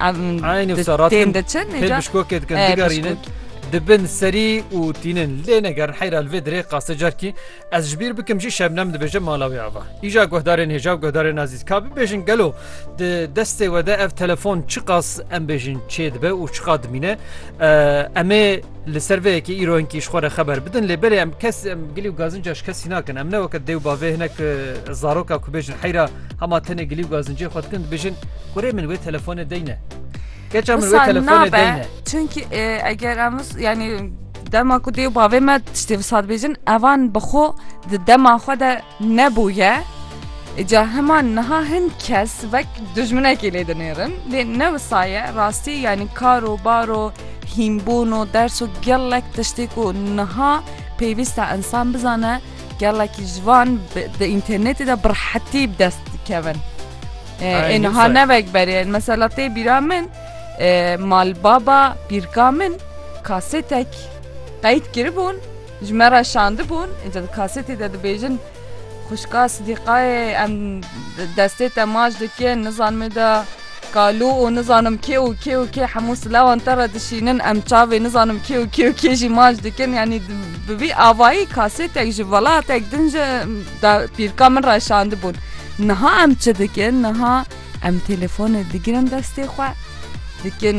Eynî wisa rast tên diçin pêl bişkokê dikin digerînin dibin serî û tînin lê ne gerin heyra li vê dirê qase carkî ez ji bîr bikim jî şebnem dibêje mala wê ava îja guhdarên hêja û guhdarên azîz ka bibêjin gelo di destê we de ev telefon çiqas em bêjin çê dibe û çiqa dimîne emê Li ser vê yekê îro hinkî ji xwe re xeber bidin lê belê em kes em gilî û gazinca ji kesî nakin. Em ne weke dê û bavê hinek zaroka ku bêjin heyra hema tenê gilî û gazincê xwe dikin dibêjin kurê min wê telefonê deyne. Keça min wê telefonê deyne. Çünkü eger em yani dema ku dê û bavê me tiştê visat bêjin evan bi xwe di dema xwe de nebûye. Îca hema niha hin kes wek dijminekê lê dinêrin lê ne wisa ye rastî yanî kar û bar û hînbûn û ders û gelek tiştê ku niha pêwîst e insan bizane gelekî ji van di înternetê de bi rehetî bi dest dikevin. Ê niha ne wek berê mesela tê bîra min malbaba pîrka min kasetek qeyd kiribûn Ji me re şandibûn, îcar di kasetê de dibêjin xwişka Sidîqayê em destê te maç dikin, nizanim ê de Kalu û nizanim kê û kê û kê hemû silavan te re dişînin, em çavê nizanim kê û kê û kê jî maç dikin yanî bi vî avayî kasetek ji welatek din ji da pîrka min re şandibûn. Niha em çi dikin, niha em têlefonê digirin destê xwe dikin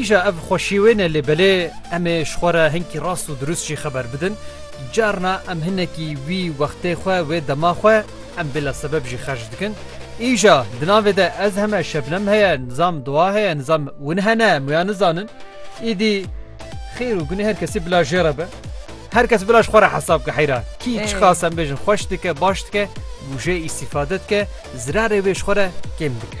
Îja ev xweşî wê ne lê belê em ê ji xwe re hinkî rast û dirust jî xeber bidin. Carna em hinekî wî wextê xwe wê dema xwe em bêla sebeb jî xerc dikin. Îja di navê de ez heme Şebnem heye, nizam Doğa heye, nizam win hene em wiya nizanin. Îdî xêr û gunê her kesî bila jê re be. Her kes bila ji xwe re hesab bike heyra. Kî Ê. çiqas em bêjin xweş dike, baş dike, wije îstîfade dike, zirarê wê ji xwe re kêm dike.